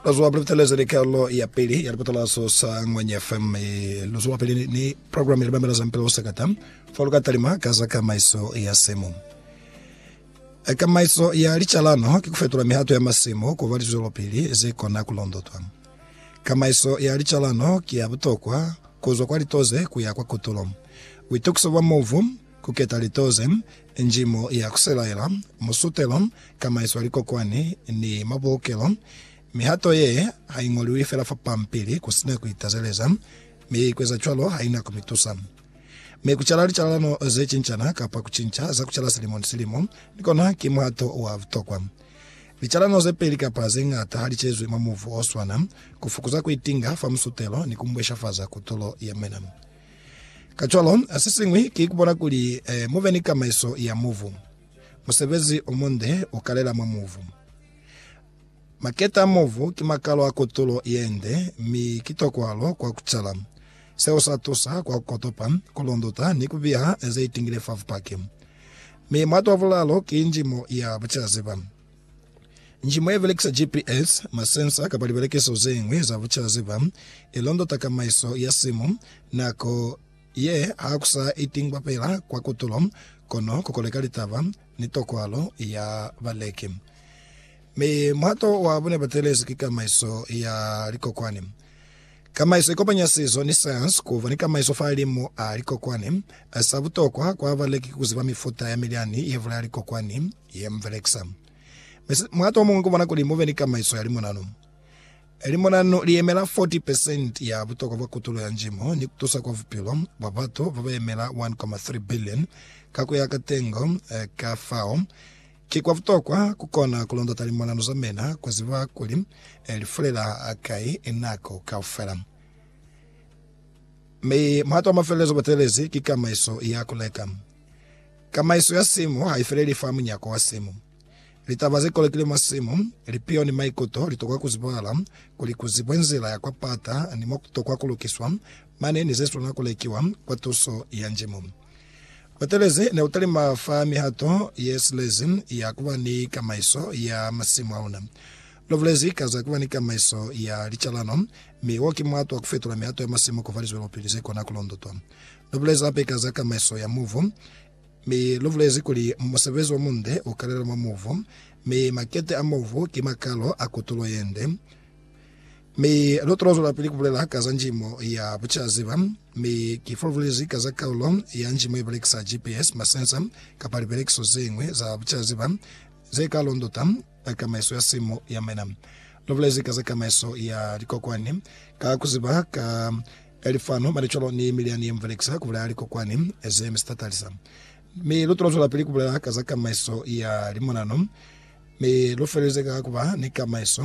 Bazwa Briteleza ni Karolo ya Pili ya Lipatalazo sa Ngwenya FM. Luzwa pili ni programu ya Libambela Zampela Usakata. Foluka talima ka za kamaiso ya semo. Kamaiso ya licalano ki kufetula mihato ya masemo kuba lizwelopili ze kona kulondotwa. Kamaiso ya licalano ki ya butokwa kuzwa kwa litoze kuya kwa kutulo. Buitokiso bwa movu Ku keta lito ze njimo ya ku selaela, musutelo, kamaiso ya likokwani, ni mabulukelo. Mihato ye ha i ñoliwi fela fa pampili ku si na ku itazeleza, mi ku eza cwalo ha i na ku mi tusa. Mi ku cala licalalano ze cincana kapa ku cinca za ku cala silimo ni silimo ni kona ki muhato wa butokwa. Licalalano ze peli kapa ze ñata ha li cezwi mwa muvu o swana, ku fukuza ku itinga fa musutelo ni ku mbweshafaza kutulo ya mwina. Kacwalo, sesiñwi ki kubona kuli eh, mube ni kamaiso ya mubu. Musebezi omunde ukalela mwa mubu. Maketa a mubu ki makalo a kutulo yende, mi ki tokwalo kwa kucala. Seo sa tusa kwa kukotopa, kulunduta, ni kubiha zeitingile fa bupaki. Mi mwato wa bulalo ki njimo ya bucaziba. Njimo ye belekisa GPS, masensa kapa libelekiso ze ñwi za bucela-ziba i londota kamaiso ya simu. Nako ye ha ku sa itingwa fela kwa kutulo, kono ku koleka litaba ni tokwalo ya baleki. Mi muhato wa bune batelezi ki kamaiso ya likokwani. Kamaiso ikopanya sizo ni sayansi kuba ni kamaiso fahalimu a likokwani. Sa butokwa kwa baleki ki kuziba mifuta ya milyani yebulaya likokwani ye mubelekisa. Mi muhato omuñwi kubona kuli mube ni kamaiso ya limonanu. Limonanu liyemela 40 pesenti ya butokwa bwa kutulo ya njimo ni kutusa kwa bupilo bwa batu babayemela 1.3 billion ka kuya ka tengo ka fao Ki kwa butokwa ku kona ku londota limonano za mina, ku ziba kuli li fulela hakai nako kaufela. Mi muhato wa mafelelezo bo teelezi ki kamaiso ya ku leka. Kamaiso ya simu ha i feleli fa munyako wa simu. Litaba ze kolokile mwa simu, lipiho ni maikuto li tokwa ku zibahala kuli ku zibwe nzila ya kwa pata ni mo ku tokwa ku lukiswa mane ni ze swanela ku lekiwa kwa tuso ya Mulimu. Butelezi ne bu talima fa mihato ye silezi ya ku ba ni kamaiso ya masimu a luna. Lu bulezi ka za ku ba ni kamaiso ya licalano, mi wo ki muhato wa ku fetula mihato ya masimu ku ba lizwelopili ze kona ku londotwa. Lu bulezi hape ka za kamaiso ya muvu, mi lu bulezi kuli musebezi wa munde u kalela mwa muvu, mi makete a muvu ki makalo a kutulo ye nde. Mi lu tolo zwelapili kubulela ka za njimo ya bucaziba, mi ki fulufulezi ka za kaulo ya njimo ibelekisa GPS, masensa, kapa libelekiso zeñwi za bucaziba ze ka londota ka kamaiso ya simu ya mina. Lu bulezi ka za kamaiso ya likokwani ka kuziba ka lifanu, malicolo ni milyani ye mubelekisa kubulaya likokwani ze mi sitatalisa. Mi lu tolo zwelapili kubulela ka za kamaiso ya limonano, mi lu felelize ka kuba ni kamaiso